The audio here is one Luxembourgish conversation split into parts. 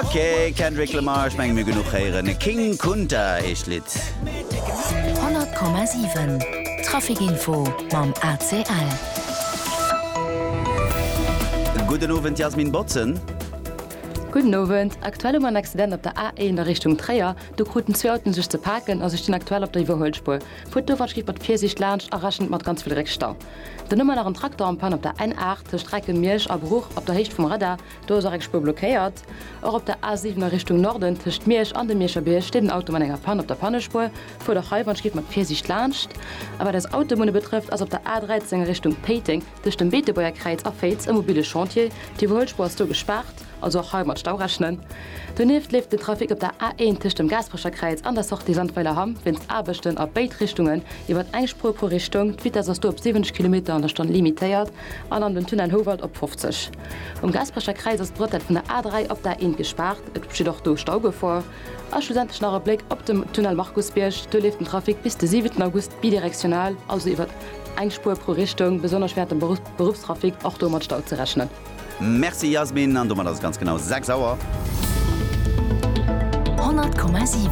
Ok, Kendrick Lamar, ech menge mir genuch héieren. King Kunta heescht d'Lidd. 100,7 Trafic Info mam ACL. Gudden Owend Jasmin Botzen. Gudden Owend, aktuell hu mer en Accident op der A1 a Richtung Tréier. Do kruten zwee Autoen sech ze paken a se stinn aktuell op der Iwwerhuelspuer. Fuert dowatsch giff mat Virsiicht laanscht a rechent mat ganz vill Réckstau. Dann hu mer nach en Traktor en Panne op der N8 tëscht Recken, Miersch a Bruch op der Héicht vum Radar. Do ass och eng Spuer blockéiert. Och op der A 7 a Richtung Norden, tëscht Miersch an dem Mierscher Bierg, steet en Auto mat enger Pann op der Pannespuer. Fuert och hei wann et geet mat Virsiicht laanscht. A wat eis Autobunne betrëfft, ass op der A 13 a Richtung Péiteng, tëscht dem Beetebuerger Kräiz a Féiz, e mobile Chantier. D'Iwwerhuelspuer ass do gespaart, also och hei mat Stau rechnen. Donieft leeft den Trafic op der A 1 tëscht dem Gaasperecher Kräiz an der Sortie Sandweiler Hamm wéinst Aarbechten a béid Richtungen iwwert eng Spuer pro Richtung. D'Vitess ass do op 70 Kilometer an der Stonn limitéiert. an an den Tunnel Houwald op 50. Um Gaasperecher Kräiz ass d'Bretelle vun der A3 op d'A1 gespaart, et besteet och do Staugefor. A schlussendlech nach e Bléck op de Tunnel Markusbierg, do leeft den Trafic bis de 7 August bidirektional, also iwwert eng Spuer pro Richtung, besonnesch wärend dem Beruffstrafic och do mat Stau ze rechnen. Merci Yasmin, an domat ass et ganz genau 6 Auer. 100,7.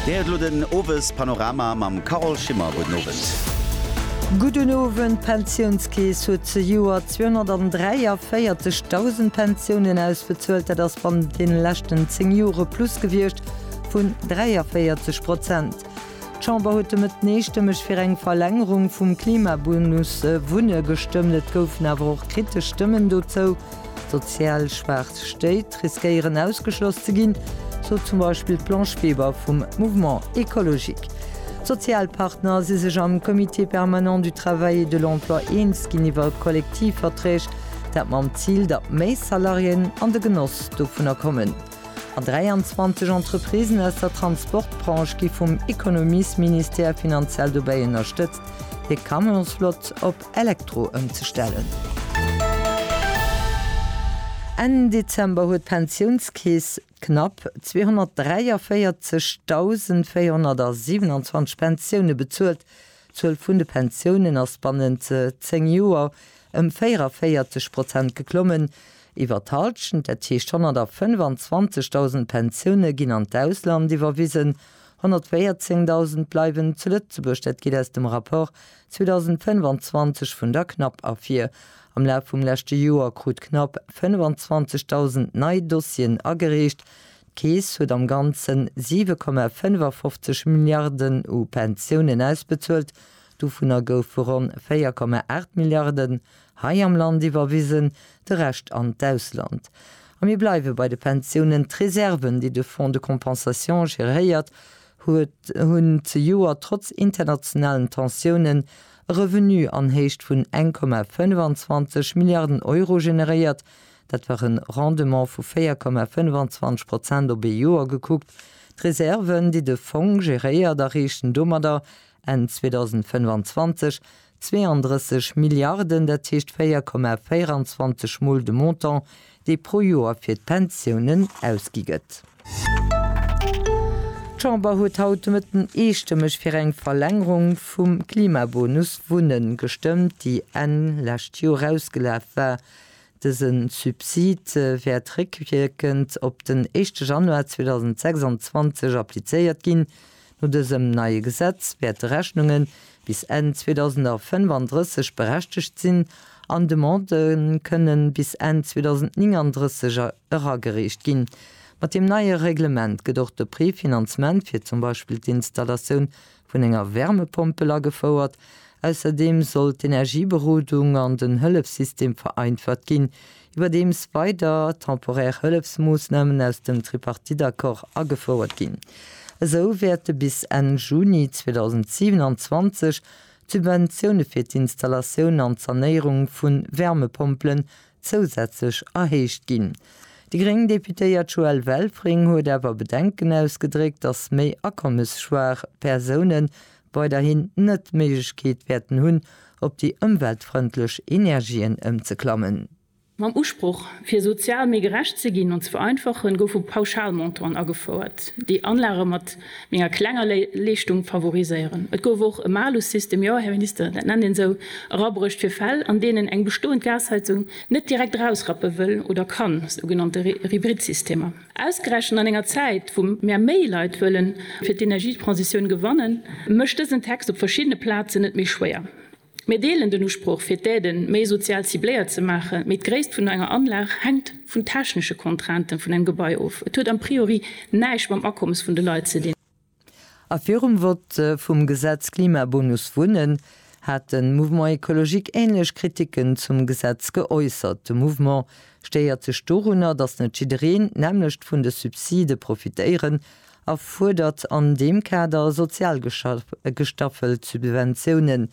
Dir héiert elo den Owespanorama mam Carole Schimmer. Gudden Owend. Gudden Owend. D'Pensiounskeess huet zejoert 243.000 Pensiounen ausbezuelt. Dat ass bannent deene leschten 10 Jore plus gewiescht vun 43 Prozent. D'Chamber huet de Mëtten eestëmmeg fir eng Verlängerung vum Klimabonus Wunne gestëmmt. Et goufen awer och kritesch Stëmmen dozou. Sozial schwaach Stéit riskéieren ausgeschloss ze ginn, sot zum Beispill d'Blanche Weber vum Mouvement écologique. D'Sozialpartner si sech am Comité permanent du travail et de l'emploi eens ginn iwwer Kollektivverträg, dat mam Zil, datt méi Salariéen an de Genoss dovunner kommen. An 23 Entreprisen aus der Transportbranche gi vum Ekonomiesministère finanziell dobäi ënnerstëtzt, hir Camionsflott op Elektro ëmzestellen. Enn Dezember huet d'Pensiounskeess knapp 243.427 Pensioune bezuelt, D'Zuel vun de Pensiounen ass bannent 10 Joer ëm 44 Prozent geklommen, iwwer d'Halschent, dat heescht 125.000 Pensioune ginn an d'Ausland iwwerwisen, 114.000 bleiwen zu Lëtzebuerg. Dat geet aus dem Rapport 2025 vun der CNAP ervir. Am Laf vum leschte Joer krut d'CNAP 25.000 nei Dossieren agereecht, D'Keess huet am Ganzen 7,55 Milliarden u Pensiounen ausbezuelt, dovunner goufe ronn 4,8 Milliarden hei am Land iwwerwisen, de Rescht an d'Ausland. A mir bleiwe bei de Pensiounen, D'Reserven, déi de Fonds de compensation geréiert huet, hunn zejoert trotz internationalen Tensiounen e Revenu an Héicht vun 1,25 Milliarden Euro generéiert, Dat war e Rendement vu 4,25 Prozent op ee Joer gekuckt. D'Reserven, déi de Fong geréiert, erreechen domadder Enn 2025 32 Milliarden, dat heescht 4,24 Mol de Montant, dee pro Joer fir d'Pensiounen ausgi gëtt. D'Chamber huet haut de Mëtten eestëmmeg fir eng Verlängerung vum Klimabonus Wunnen gestëmmt, déi Enn lescht Joer ausgelaf war. Dëse Subsid wäert réckwierkend op den éischte Januar 2026 applizéiert ginn. No dësem neie Gesetz wäerte Rechnunge bis Enn 2035 berechtegt sinn an Demandë kënne bis Enn 2039 eragereecht ginn. Mat deem neie Reglement gëtt och de Préfinancement fir zum Beispill d'Installatioun vun enger Wärmepompel agefouert. Ausserdeem soll d'Energieberodung an den Hëllefssystem vereinfacht ginn, iwwerdeems weider temporär Hëllefsmoossnamen aus dem Tripartite-Accord agefouert ginn. Esou wäerte bis Enn Juni 2027 d'Subventioune fir d'Installatioun an d'Sanéierung vu Wärmepompelen zousätzlech erhéicht ginn. Déi gréng Deputéiert Joëlle Welfring huet awer Bedenken ausgedréckt, datt méi akommesschwaach Persounen weiderhin net d'Méiglechkeet wäerten hunn, op déi ëmweltfrëndlech Energien ëmzeklammen. Mam Usproch, fir sozial méi gerecht ze ginn an ze vereinfachen, goufe Pauschalmontanten agefouert, déi Anlage mat menger klenger Leeschtung favoriséieren. Et gouf och e Malussystem, jo, Här Minister, dat nennt een esou, erabruecht fir Fäll, an deenen eng bestoend Gasheizung net direkt erausrappe wëll oder kann, sougenannte Hybridsystemer. Ausgerechent an enger Zäit, wou mär méi Leit wëllen fir d'Energietransitioun gewannen, mécht dësen Text op verschiddene Plazen et méi schwéier. Mir deelen den Usproch fir d'Aiden méi sozial cibléiert ze maachen, mee d'Gréisst vun enger Anlag hänkt vun technesche Contrainten vun engem Gebai of. Et huet am priori näischt mam Akommes vun de Leit ze dinn. A virum Vott vum Gesetz Klimabonus Wunnen hat de Mouvement Ecologique änlech Kriticken zum Gesetz geäussert. De Mouvement stéiert sech dorunner, datt net jiddereen d'nämmlecht vun de Subside profitéieren a fuerdert an deem Kader sozial gestaffelt Subventiounen.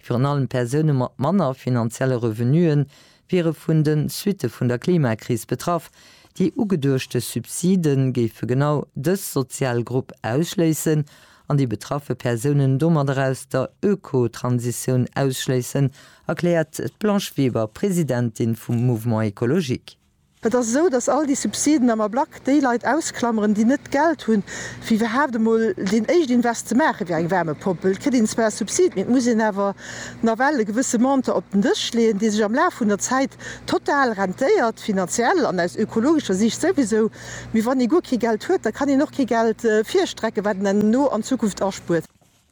Virun allem Persoune mat manner finanzielle Revenue wiere vun de Suitte vun der Klimakris betraff. Déi ugeduechte Subside géife genau dës sozial Grupp ausschléissen an déi betraffe Persounen domadder aus der Ökotransitioun ausschléissen, erkläert d'Blanche Weber, Presidentin vum Mouvement Ecologique. Et ass esou, datt all déi Subsiden am Ablack déi Leit ausklameren, déi net d'Geld hunn, fir iwwerhaapt emol deen éischt Invest ze maachen, wéi eng Wärmepomp. Et kritt een zwar e Subsid, mee et muss een awer nawell e gewësse Montant op den Dësch leeën, dee sech am Laf vun der Zäit total rentéiert, finanziell an aus ökologescher Siicht souwisou. Mee wann ee guer kee Geld huet, da kann een och kee Geld virstrecken, wat een herno an Zukunft aspuert.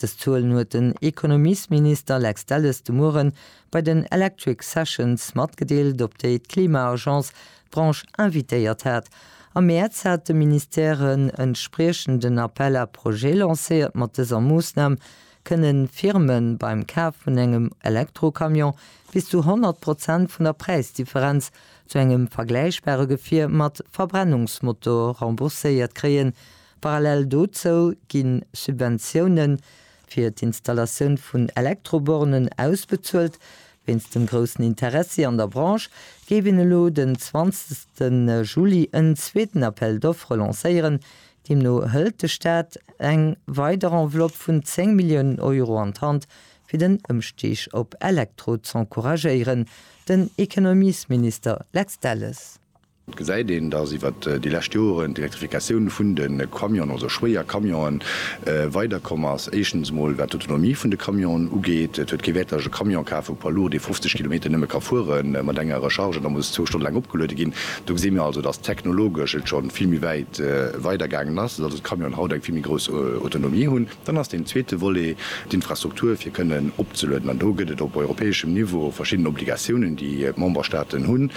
Dës Zuelen huet den Ekonomiesminister Lex Delles de Mueren bei den Electric Sessions matgedeelt, op déi d'Klima-Agence d'Branche invitéiert hat. Am Mäerz hat de Ministère en entspriechenden Appel à projets lancéiert. Mat dëser Moossnam kënne Firme beim Kaf vun engem Elektrocamion bis zu 100 Prozent vun der Präisdifferenz zu engem vergläichbare Gefier mat Verbrennungsmotor rembourséiert kréien, Parallel dozou ginn Subventioune fir d'Installatioun vun Elektrobornen ausbezuelt. Wéinst dem groussen Interessi an der Branche géif een elo den 20 Juli en zweeten Appel d'offres lancéieren. Deemno hëlt de Staat eng weider Enveloppe vun 10 Milliounen Euro an d'Hand, fir den Ëmstig op Elektro z'encouragéieren, den Ekonomiesminister Lex Delles. Et gesäit een, dass iwwert déi lescht Joren d'Elektrifikatioun vun de Camionen, also schwéier Camionen, weider komm ass. Éischtens emol wat d'Autonomie vun de Camionen ugeet. Et huet kee Wäert, datt ech e Camion kafen, e Poids lourd, dee 50 Kilometer nëmme ka fuere mat enger Recharge an da muss zwou Stonne laang opgeluede ginn. Do gesi mir also, dass technologesch et scho vill méi wäit weidergaangen ass, dass also d'Camionen haut eng vill méi grouss Autonomie hunn. Dann ass deen zweete Volet d'Infrastruktur, fir kënnen opzelueden. An do gëtt et op europäeschem Niveau verschidden Obligatiounen, déi d'Memberstaaten hunn.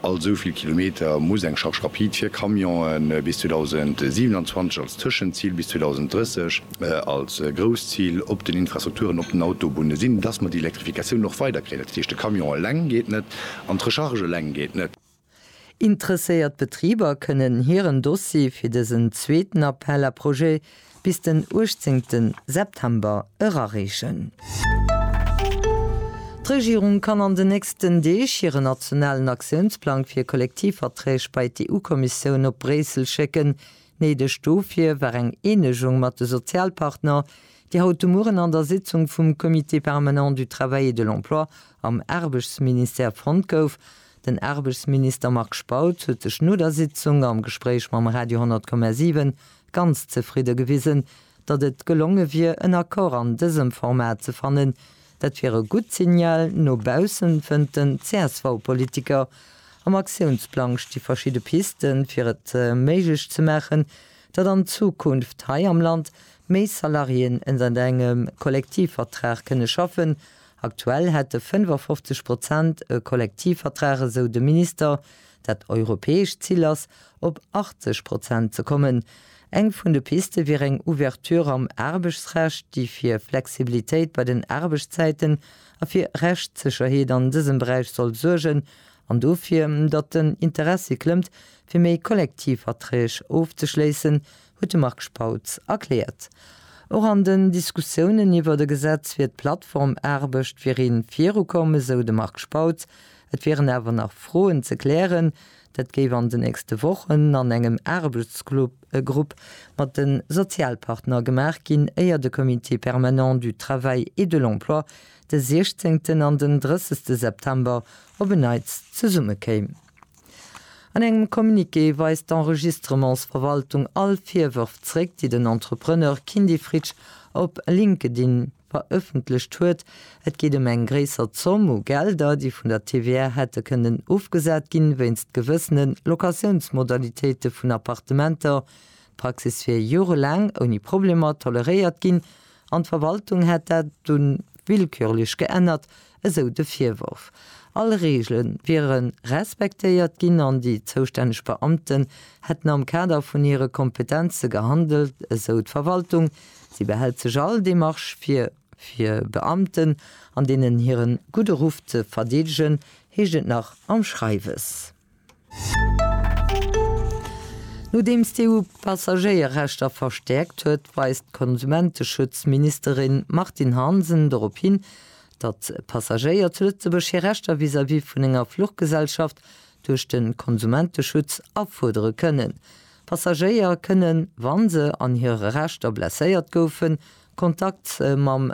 All esou vill Kilometer muss eng Charge rapide fir Camionen bis 2027 als Tëschenzil, bis 2030 als grousst Zil op den Infrastrukturen, op den Autobunne sinn, dass mer déi Elektrifikatioun och weiderkréien. Dat heescht, de Camion eleng geet net an d'Recharge eleng geet net. Interesséiert Betriber kënnen hiren Dossier fir dësen zweeten Appel à projets bis den 18 September erareechen. D'Regierung kann an den nächsten Deeg hiren nationalen Aktiounsplang fir Kollektivverträg bei d'EU-Kommissioun op Bréissel schécken. Néideg dofir war eng Eenegung mat de Sozialpartner, déi haut de Mueren an der Sitzung vum Comité permanent du travail et de l'emploi am Aarbechtsministère fonnt gouf. Den Aarbechtsminister Marc Spautz huet sech no der Sitzung am Gespréich mam Radio 10,7 ganz zefridde gewisen, datt et gelonge wier en Accord an dësem Format ze fannen. Dat wier e gutt Signal no baussen, fënnt den CSV-Politiker. Am Aktiounsplang sti verschidde Piste fir et méiglech ze maachen, datt an Zukunft hei am Land méi Salariéen ënnert engem Kollektivvertrag kënne schaffen Aktuell hätte 55 Prozent e Kollektivvertrag, esou de Minister. Dat europäescht Zil ass, op 80 Prozent ze kommen. Eng vun de Piste wier eng Ouverture am Aarbechtsrecht, déi fir Flexibilitéit bei den Aarbechtszäiten a fir Rechtssécherheet an dësem Beräich soll suergen an dofir, datt den Interessi klëmmt, fir méi Kollektivverträg ofzeschléissen, huet de Marc Spautz erkläert. Och an den Diskussiounen iwwert e Gesetz wier d'Plattformaarbecht fir ee virukomm, esou de Marc Spautz. Et wieren awer nach Froen ze klären. Dat géif an den nächste Wochen an engem Aarbechtsgrupp mat de Sozialpartner gemaach ginn, éier de Comité permanent du travail et de l'emploi de 16 an den 30 September op en Neits zesummekéim. An engem Communiqué weist d'Enregistrementsverwaltung all Virwërf zréck, déi den Entrepreneur Kindy Fritsch op LinkedIn verëffentlecht huet. Et geet ëm eng gréisser Zomm u Gelder, déi vun der TVA hätte kënnen ofgesat ginn, wéinst gewëssene Locatiounsmodalitéite vun Appartementer. D'Praxis wier jorelaang ouni Problemer toleréiert ginn an d'Verwaltung hätt dat dunn willkürlech geännert, esou de Virworf. All Reegele wiere respektéiert ginn an déi zoustänneg Beamten hätten am Kader vun hire Kompetenze gehandelt, esou d'Verwaltung. Si behält sech all Demarche vir, fir Beamten an deenen hire gudde Ruff ze verdeedegen, heescht et nach am Schreiwes. Nodeems d'EU d'Passagéierrechter verstäerkt huet, weist d'Konsumenteschutz-Ministerin Martine Hansen dorop hin, datt d'Passagéier zu Lëtzebuerg hir Rechter vis-à-vis vun enger Fluchgesellschaft duerch de Konsumenteschutz afuerdere kënnen. Passagéier kënnen, wa se an hire Rechter blesséiert goufen, Kontakt mam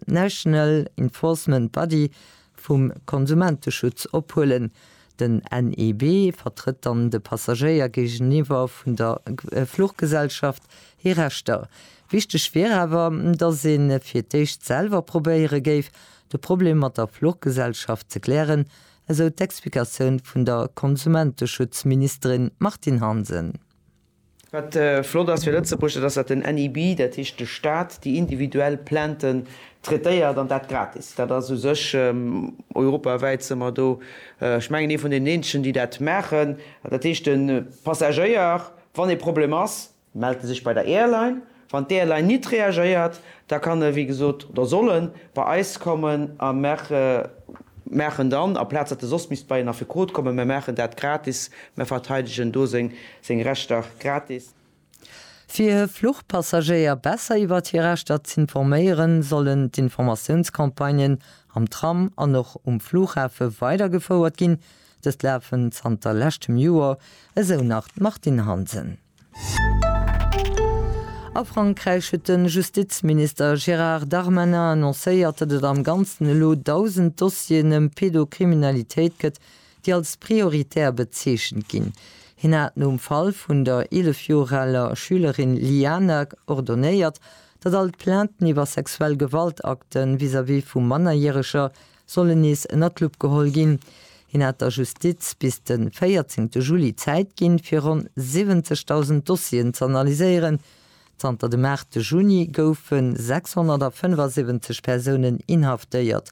National Enforcement Body, vum Konsumenteschutz ophuelen. Den NEB vertrëtt dann de Passagéier géigeniwwer vun der Fluchgesellschaft hir Rechter. Wichteg wier awer, datt ee fir d'éischt selwer probéiere géif, de Problem mat der Fluchgesellschaft ze klären, esou d'Explikatioun vun der Konsumenteschutzministerin Martine Hansen. Wat flott ass fir Lëtzebuerg, dat ass, datt den NIB, dat heescht de Staat, déi individuell Plainten traitéiert, an dat gratis. Dat ass u sech europawäit, si mer do, ech mengen, ee vun deenen eenzegen, déi dat maachen. Dat heescht, de Passagéier, wann e Problem ass, mellt e sech bei der Airline, Wann d'ALy nit reagéiert, da kann e wéi gesot, oder soll en, bei eis kommen a mer maachen dann, aplaz datt e soss misst bei een Affekot kommen, mer maachen dat gratis, mer verteidegen do seng Rechter gratis. Fir e Fluchpassagéier besser iwwert hir Rechter z'informéieren, sollen d'Informatiounscampagnen am Tram an och um Flughafe weidergefouert ginn. Dëst lafen zanter leschtem Joer, esou nach d'Martine Hansen. A Frankräich huet de Justizminister Gérard Darmanin annoncéiert, datt et am Ganzen elo 1.000 Dossieren ëm Pedokriminalitéit gëtt, déi als prioritär bezeechent ginn. Hien hat nom Fall vun der 11 Joer aler Schülerin Liana ordonéiert, datt all d'Plainten iwwer sexuell Gewaltakte vis-à-vis vu Mannerjäreger sollen nees ënner d'Lupp geholl ginn. Hien hat der Justiz bis de 14 Juli Zäit ginn, fir ronn 70.000 Dossieren ze analyséieren. Zanter dem 8 Juni goufe 675 Persounen inhaftéiert.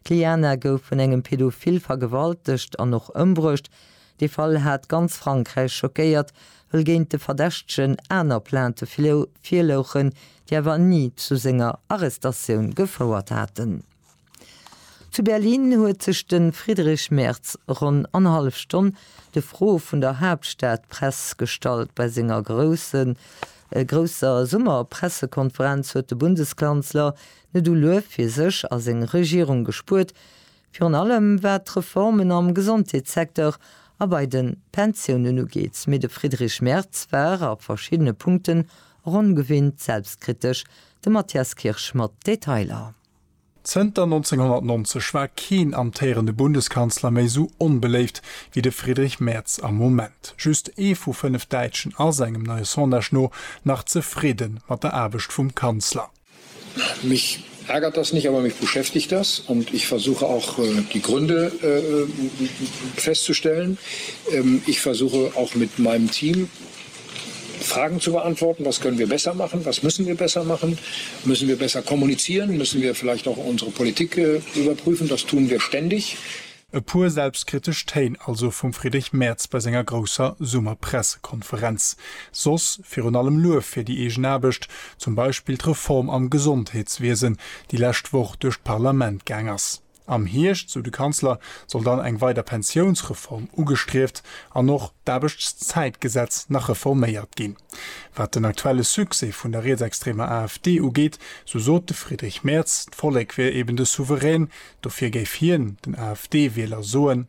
D'Liana gouf vun engem Pädophil vergewaltegt an och ëmbruecht. Dee Fall hat ganz Frankräich schockéiert, wëll géint de Verdächtegen aner Plainte virlouchen, déi awer ni zu senger Arrestatioun gefouert haten. Zu Berlin huet sech de Friedrich Merz ronn annerhallef Stonn de Froe vun der Haaptstadpress gestallt. Bei senger grousser Summerpressekonferenz huet de Bundeskanzler net u Luef fir sech a seng Regierung gespuert, virun allem wat d'Reformen am Gesondheetssecteur a bei de Pensiounen ugeet. Mee de Friedrich Merz war a verschiddene Punkten och ongewinnt selbstkritesch. De Matthias Kirsch mat Detailer. Zënter 1990 war keen amtéierende Bundeskanzler méi esou onbeléift wéi de Friedrich Merz am Moment. Just ee vu fënnef Däitschen ass, engem neie Sondage no, nach zefridde mat der Aarbecht vum Kanzler. Mich ärgert das nicht, aber mich beschäftigt das und ich versuche auch die Gründe festzustellen. Ich versuche auch mit meinem Team Fragen zu beantworten, Was können wir besser machen? Was müssen wir besser machen? Müssen wir besser kommunizieren? Müssen wir vielleicht auch unsere Politik überprüfen? Das tun wir ständig. E puer selbstkritesch Téin also vum Friedrich Merz bei senger grousser Summerpressekonferenz. Soss virun allem Luef fir déi eegen Aarbecht, zum Beispill d'Reform am Gesondheetswiesen, déi lescht Woch duerch d'Parlament gaang ass. Am Hierscht, sou de Kanzler, soll dann eng weider Pensiounsreform ugestrieft an och d'Aarbechtszäitgesetz nach reforméiert ginn. Wat den aktuelle Succès vun der rietsextremer AfD ugeet, sou sot de Friedrich Merz, d'Vollek wier eben de Souverän. Dofir géif hien den AfD-Wieler soen.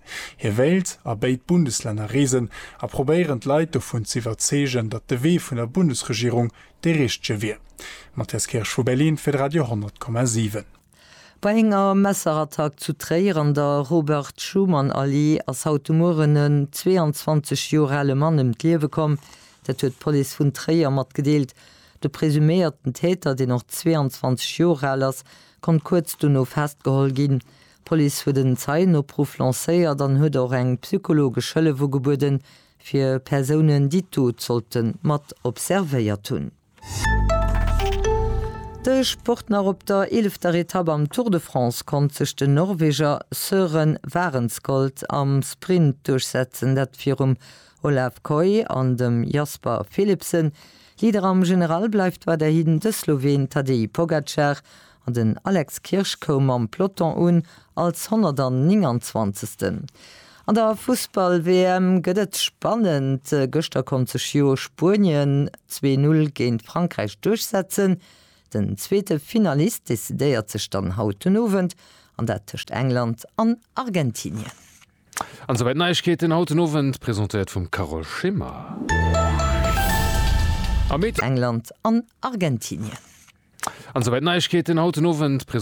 Hie wéilt a béid Bundeslänner reesen a probéieren d'Leit dovun z'iwwerzeegen, datt de Wee vun der Bundesregierung dee richtege wier. Matthias Kirsch vu Berlin fir de Radio 10,7. Bei enger Messerattack zu Tréier an der Robert-Schuman-Allee ass haut de Mueren en 22 Joer ale Mann ëm d'Liewe komm. Dat huet d'Police vun Tréier matgedeelt. De presuméierten Täter, deen och 22 Joer al ass, konnt kuerz dono festgeholl ginn. D'Police huet en Zeienopruff lancéiert an huet och eng psychologesch Hëllef ugebueden, fir Persounen, déi d'Dot sollten mat observéiert hunn. De Sport nach, Op der eelefter Etapp am Tour de France konnt sech den Norweger Søren Wahrenskold am Sprint duerchsetzen, dat virum Olav Kooij an dem Jasper Philipsen. Leader am General bleift weiderhin de Sloween Tadej Pogacar An den Alex Kirsch koum mam Peloton un als 129. An der Fussball-WM gëtt et spannend. Gëschter konnt sech jo Spuenien zwee Null géint Frankräich duerchsetzen. Den zweete Finalist decidéiert sech dann haut den Owend an dat tëscht England an Argentinien. An souwäit d'Neiegkeeten haut den Owend, presentéiert vum Carole Schimmer. Am Mee. England an Argentinien. An souwäit d'Neiegkeeten haut den Owend, presentéiert.